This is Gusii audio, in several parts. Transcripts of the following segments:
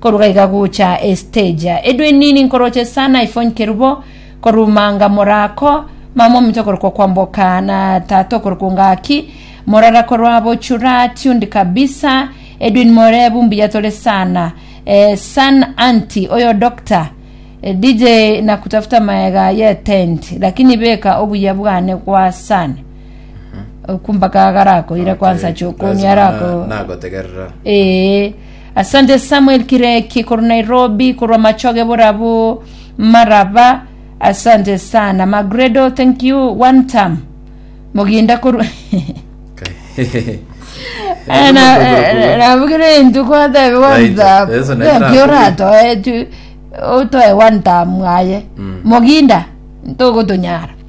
Korwa iga gocha esiteja edwe nini nkoroche sana ifonykeru bo koruma nga mora ko mama ominto korokwo kwamboka na tata okorokwo ngaki morara korwa bochura tuned kabisa edwin morebu mbuya tore sana eh, san anti oyo doctor Eh, DJ na kutafuta maega ye tent lakini beka obuya bwane kwa sana okumbaka garako ira kwansa chokoni arako nagotegerera ee Asante Samuel Kireki korwa Nairobi korwa machoge borabu maraba asante sana Magredo thank you one time muginda korwa Eh, na- eh, nabugire intu kwatebe one Right. time Yesu naye Thank you, nakugira. oratoe tu- otoe one time mwaye muginda ntogotunyara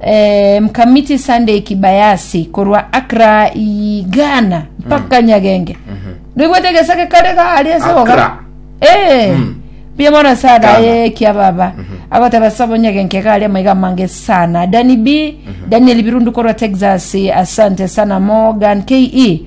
Eh, Mkamiti Sunday Kibayasi korwa Accra i Ghana mpaka Nyagenge. Ndigwete gesake kare ga ari ase boga. Accra. Eh. Mm. Bia mwana sada Ghana. ye kia baba. Agoteba sabo Nyagenge ga ari amaiga mange sana. Dani B, Daniel Birundu korwa Texas, asante sana Morgan KE.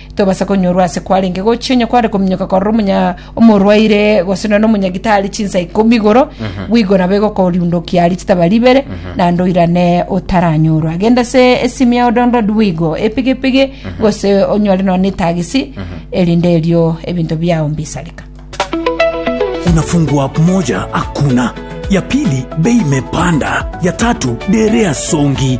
Tobasa konyorwa ase kwarenge gochia onye kware kominyoka korora omonya omorwaire gose nonya omonyagitari chinsa ikomi igoro bwigo nabo egokoriundokia aria chitaba ribere naende oirane otaranyorwa genda ase esimi ya odondondi bwigo epigipigi gose onyore nonya etagisi erinde erio ebinto biao mbisareka unafungua moja hakuna ya pili bei imepanda ya tatu derea songi